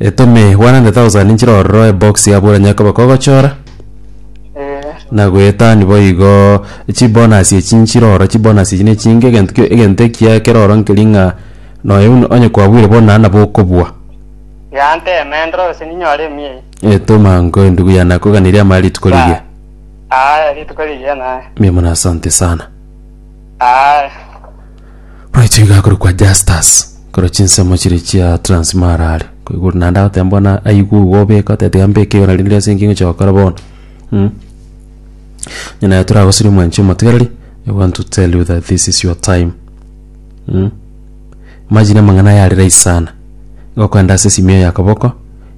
Etome 100,000 nchire ororo ebox ya buranya ekobeka ogochora Eh, na goetani boigo chibonus echi nchire ororo chibonus echi nechinge egento ki- egento ekiya kero ororo nkeri ng'a noyo buna onye kwabwire bono naende nabo okobua yanteme ndore gose ninyore emiya eye. etoma nko endugu ya nakoganirie amaya rituko rigiya Aya rituko rigiya naye. mia mono asante sana Aya. Bwaicho iga akorokwa Justus, korwa chinsemo chiria chia Transmara are, ko igoro naende agoteba bono aigwe igo obeke oteba tiga mbeke igoro rende ase inki ngochia gokora bono mh. Onye naye toragoserie omwanchi omotigareri, I want to tell you that this is your time mh. Imagine amang'ana aya are rahisi sana, igo okogenda ase esimi eye y'akoboko,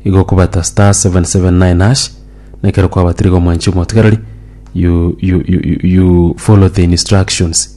igo okobata star seven seven nine hash, na ekero kwabatire iga omwanchi omotigareri, you you you you you follow the instructions.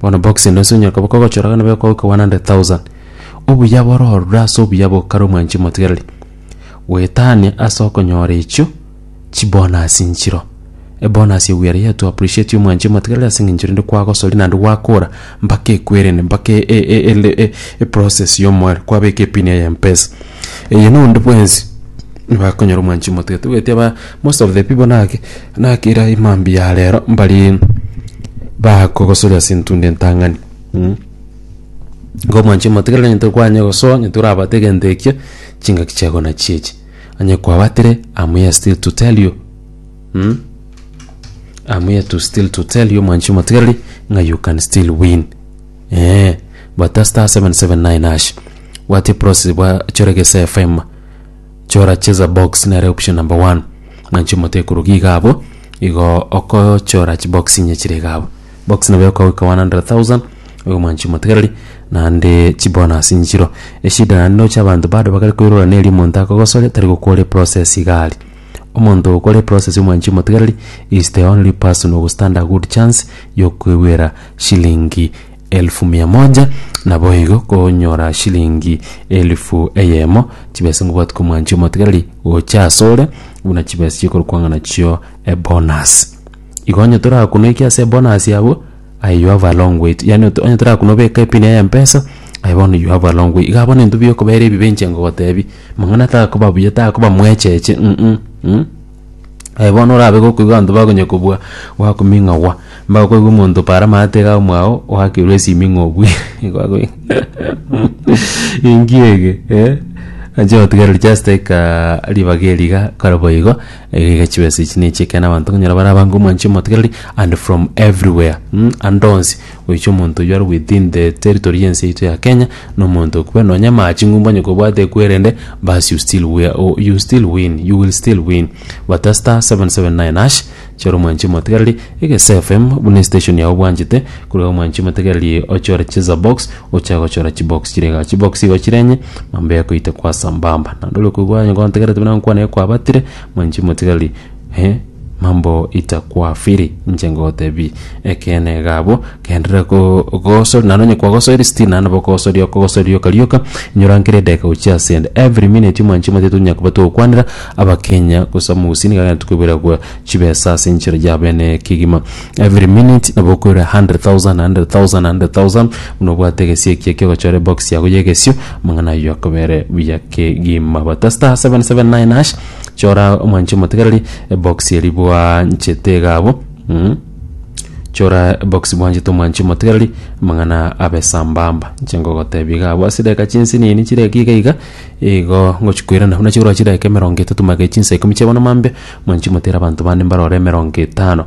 Bono box ino ase onyakoba kogochora gana beko goika 100,000. Obuya boro orure ase obuya bokare omwanchi omotigereri. Goetania ase okonyora echio chibonus nchiro. Ebonus eye we are here to appreciate omwanchi omotigereri ase eng'encho rende kwagosoria naende gwakora mpaka ekwerende mpaka e- e- e- ele- e- eprocess ya omoerio kwabeka epin eye ya mpesa. Eye na onde bwensi bakonyora omwanchi omotigereri togoeti aba most of the people naki. Naki era emambia ya rero mbari bakogosoria ase entunda entang'ani mm. Igo mwanche motigere onye tokwanye gosoa onye torabate egento ekia chingaki chiago nachio echi onye kwabatire am here still to tell you mm? am here to still to tell you mwanchi motigereri ng'a you can still win eh bata star 779 hash bwate process bwa chore gese fm Chora cheza box nere option number one. Mwanchi omote ekorogi iga abo. Igo okochora chi box inye chire iga abo. Box nabo yokogoika 100,000 igo mwanchi omotegereri naende chi bonus inye chiro. Eshida naende noche abanto bado bakare koirora neri omonto akogosoria tari gokore process iga aria. Omonto okore process yo mwanchi omotegereri is the only person who stand a good chance yokoigwera shilingi Elfu mia moja, naboigo konyora shilingi elfu eyemo, chibesa ngobwati komwancha omotigareri gocha asore, buna chibesa chikorukwang'a nachio ebonus. Igo onye torakunoiki ase ebonus yabo, aye you have a long way to- yaani onye torakunobeka epini ya mpesa, aye bono you have a long way. Iga bono intwe biokobera ebibe inche ngogotebia, mang'ana takoba buya, takoba mwecheche, mm, mm. Aye bono orabe gokoigwa abanto bakonye kobua gwakuming'agwa, mbao koigwa omonto para amaate iga omwao oakirwe esimi ng'a obuire nigo akoigu Enki ege eh, anche gotigereri just aikaa ribaga eri iga kare boigo, iga iga chibesa echi na echi ekero abanto okonyora bare abange omwanchi omotigereri and from everywhere mh, ande onsi Goicha omonto oyio arogwetinde territory y'ense yaito ya Kenya nomonto okwe nonya maa ching'umbu onye kobwate kwerende baas you still wea o you still win you will still win bata star 779 hash chora omwanchi omotegereri egese FM buna estation yago obwanchete korwa omwanchi omotegereri ochore cheza box ochak gochora chibox chire igaa chibox igo chire enye mambo yakoite kwa sambamba naende ore koigwa onye gontegerete buna gokwana ekwabatire mwanchi omotegereri. Ee, mambo itakwafiri, inche ngotebi, ekeene iga abwo, genderera kogosoria, naende onye kwagosoiri still naende nabo okogosoria okogosoria rioka rioka, inyora nkera edageka gochia ase ende, every minute omwanchama tiga tonya koba togokwanera abakenya gose omogusii nigo agente koiborerwa chibesa ase enchera ya bene kegima, every minute nabo okoirwa a hundred thousand, a hundred thousand, a hundred thousand, buna obwate egesie ekiya kia ogochora ebox yago ya egesio, amang'ana ayio akoba ere buya kegima but star seven seven nine hash. Chora omwanche omotegereri ebox eri bwanchete iga abwo mm. Chora ebox bwanchete omwanchi omotegereri amang'ana abe sambamba inche ngogotebia iga abwo ase edageka chinsinini chire iga iga igo ngochia koirana buna chigoro chidaeka emerongo etato magega chinsa ikomi chia bono mambia mwanchi motere abanto bande mbarore emerongo etano.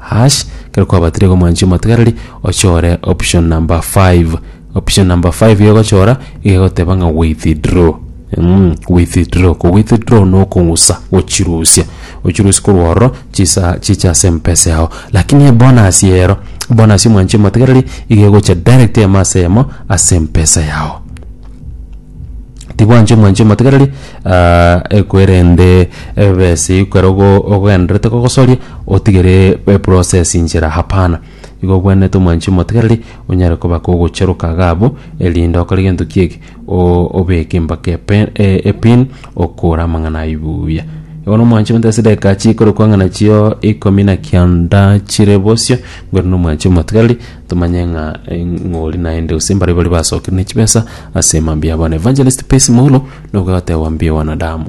Hash, kero kwabatire iga omwanchi omotegereri ochore option number five. Option number five iga egochora iga egoteba ng'a withdraw. Mm, withdraw. Ko withdraw no okong'usa, gochirusia. Ochirusie korwa ororo chisa chiche ase empesa yao. Lakini ebonus ero, bonus ya omwanchi omotegereri iga egocha direct eyemo ase eyemo ase empesa yao. tibwanchire mwanchire motegereri ah, ekwerende ebesi kwero go- ogogenderete gogosoria otigere eprocess inchera hapana igo obwenerete omwanchire motegereri onyare koba kogocheroka iga abwo erinde okore gento ki'eki o- obeke mpaka epe- e- epin okore amang'ana aywo buya. Bono omwanchire motegereri ase edagika chikorokwa ng'a nachio ikomi na kianda chire bosio, bwenerete omwanchire motegereri. Tomanye ng'a ng'ori naende gose mbare baria basokerwa ne chibesa ase mambia abo. An Evangelist Percy Moulo nobwate agoambia wanadamu.